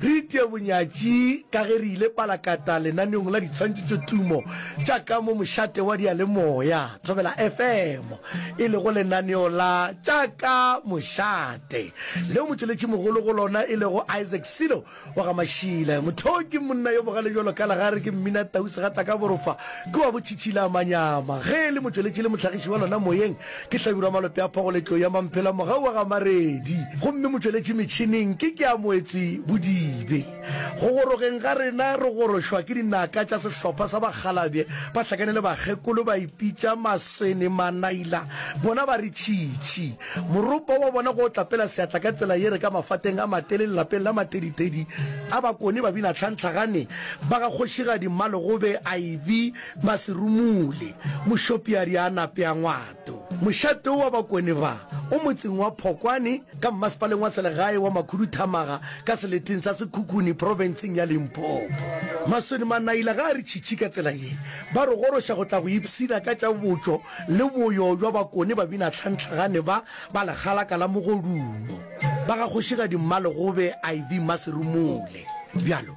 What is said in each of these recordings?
Re itia bonyatši ka ge re ile palakata lenaneong la ditshwantšhitšotumo tša ka mo mošate wa diyalemoya Thobela FM, e lego lenaneo la Tša ka Mošate, leo motšweletšimogolo go lona e lego Isaac Silo wa ga Mashile. Motho o ke monna yo bogale bjalo ka legare, ke Mminatau Segatakaborofa, ke wa Botšhitšhilamanyama. Ge e le motšweletši le mohlagiši wa lona moyeng, Ke hlabirwa malope a phogo le tlou ya mamphela mogau wa ga Maredi, gomme motšweletši metšhineng ke Keamoetsi Bodibe. Go gorogeng ga rena re gorošwa ke dinaka tša sehlopha sa bakgalabje ba hlakane le bakgekolo ba ipitša Maswene Manaila, bona ba re tšhitšhi. Moropa wa bona go tlapela seatla ka tsela ye re ka mafateng a matele lelapeng la Mateditedi a Bakone Babinatlhantlhagane ba ga Kgošigadi Mmalogobe iv. Ba se rumule. Mošopiari a nape a ngwato. Mošate wo wa Bakone ba o motseng wa Phokwane ka mmasepaleng wa selegae wa Makhuduthamaga ka seleteng sa Sekhukhune profenseng ya Limpopo. Maswene Manaila ga a re tšhitšhi ka tsela ye ba re goroša go tla go ipshina ka tša botšo le boyo bja Bakone babinatlhantlhagane ba ba legalaka la mogodumo ba ga Kgošigadi Mmalegobe IV Maserumule. Bjalo.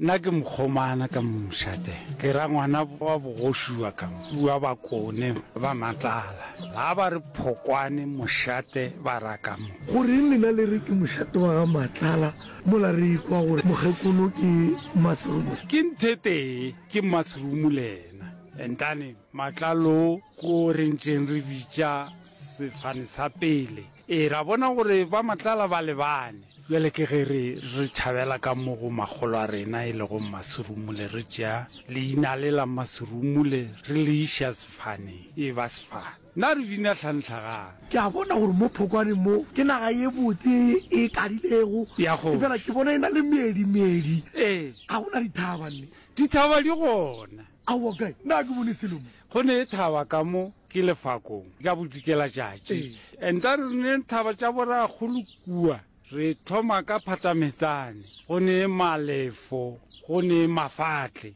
Nna ke mokgomana ka mošate, ke ra ngwana wa bogoši wa ka wa Bakone ba Matlala. Ga ba re Phokwane mošate ba ra ka mo. Goreng lena le re ke mošate wa ga Matlala mola re ikwa gore mokgekolo ke Maserumule? Ke nthetee ke Maserumule yena. Entane Matlalo ko re ntšeng re bitša sefane sa pele. Ee, ra bona gore ba matlala ba lebane. Bjale ke ge re, re tšhabela ka mo go makgolo a rena e lego mmasurumule, re tšea leina le la mmasurumule re le iša sefaneng, e ba sefane. Na re bina tlhanhlagang? Ke a bona gore mo phokwaneng mo ke naga ye botse ye e kadilego, Ya kgoši. efela ke bona e na le meedi, meedi. Ee. Ga go na dithaba, nne? Dithaba di gona. Aowa, kae? Na ke bone selo mo? Go ne thaba ka mo ke lefakong ka bodikelatšatši. Enta re ne thaba tša borakgolo kua. Re thoma ka phatametsane. Go ne malefo. Go ne mafatle.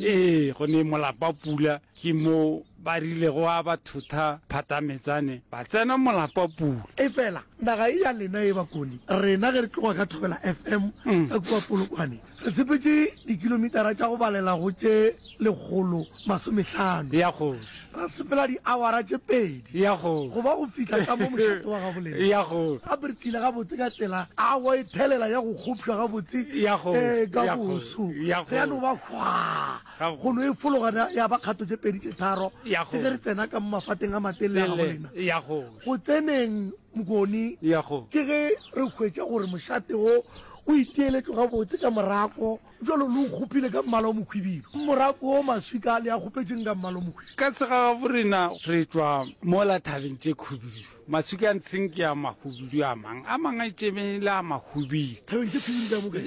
Ee, go ne molapapula. Ke mo ba rilego a ba thotha phatametsane ba tsena molapapula. Efela naga ye ya lena e ba kone. Rena ge re tloga ka Thobela FM ka kua Polokwane, Re sepetše dikilomitara tša go balela go tše lekgolo masomehlano, Ya Kgoši. ra sepela diawara tše pedi, Ya Kgoši. go ba go fihla ka mo mošate wa gabolena. Ya Kgoši. Gape re tlile gabotse ka tsela a go e thelela ya go kgopšwa gabotse Ya Kgoši. ee, ka Ya Kgoši. boso. Ya Re ya no ba hwaa, Gabotse. go no e fologana ya ba kgato tše pedi tše tharo Ya ke ge Kgoši. re tsena ka mo mafateng a matelele a Tele. gabolena. Ya Kgoši. Go tseneng Mokoni Ya Kgoši. ke ge re hwetša gore mošate wo O iteeletšwe gabotse ka morako, bjalo le o kgopile ka mmala o mokhwibidu, morako wo maswika le a kgopetšeng ka mmala o mokhwibidu. Ka segagabo rena re tšwa mola thabeng tše khubidu, maswika a ntsheng ke a makhubidu a mang, a mang a itšemeng e le a makhubidu. Thabeng tše khubidu tša bobe.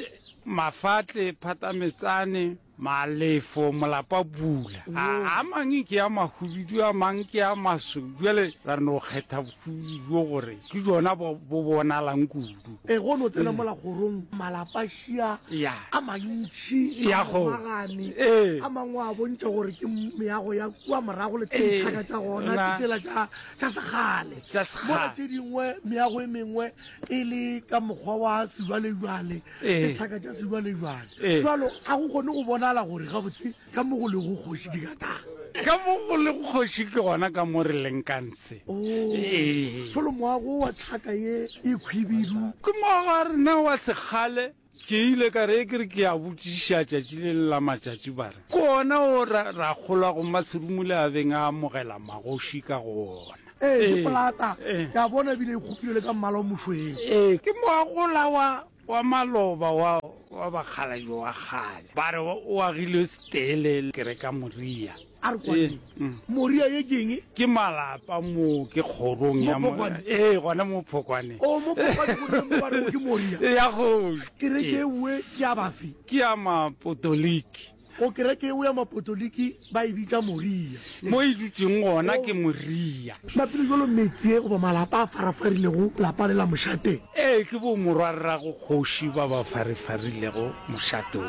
Mafatle, phatametsane. Malefo, molapa pula. A, a mang ke a mahubidu, a mang ke a maso. Bjale ra no kgetha bohubidu bjo gore ke jona bo bo bonalang kudu. E go no tsena mola kgorong malapa šia Ya. a mantši Ya a go. magane Ee. a mangwe a bontšha gore ke m- meago ya kua morago le Ee. tšhaka tša gona Na. ke tsela tša tša segale Tša segale. mola tše dingwe meago e mengwe e le ka mokgwa wa sejwalejwale dithaka tša sejwalejwale jalo ga go kgone go bonala gore gabotse ka mo go lego kgoši ke ka tang ka mo go le kgoši ke gona ka mo re leng ka ntshe folo oh. moago wa tlhaka ye e khwibidu ke moago a rena wa sekgale ke ile ka re ke re ke a botšiša tšatši le le la matšatši ba re ke ona o ra kgolwa go maserumole a beng a amogela magoši ka go ona ee ke polata ke a bona ebile e kgopile le ka mmala o mošweng ee ke moagola wa wa maloba wa wa bakgalajo wa kgale ba re o agilwe setele ke re ka moria a re kwaneng mm. moria ye keng ke malapa mo ke kgorong ya ee gona mo phokwane o mo phokwane ke moria ya go ke re ke we ke ya bafi ke ya mapotoliki Go kereke yeo ya Mapotoliki ba e bitša Moria. Mo e dutšeng gona ke Moria. Maphelo bjalo meetse goba malapa a farafarilego lapa le la mošate. Ee, ke bo morwarrago kgoši ba ba farifarilego mošatong.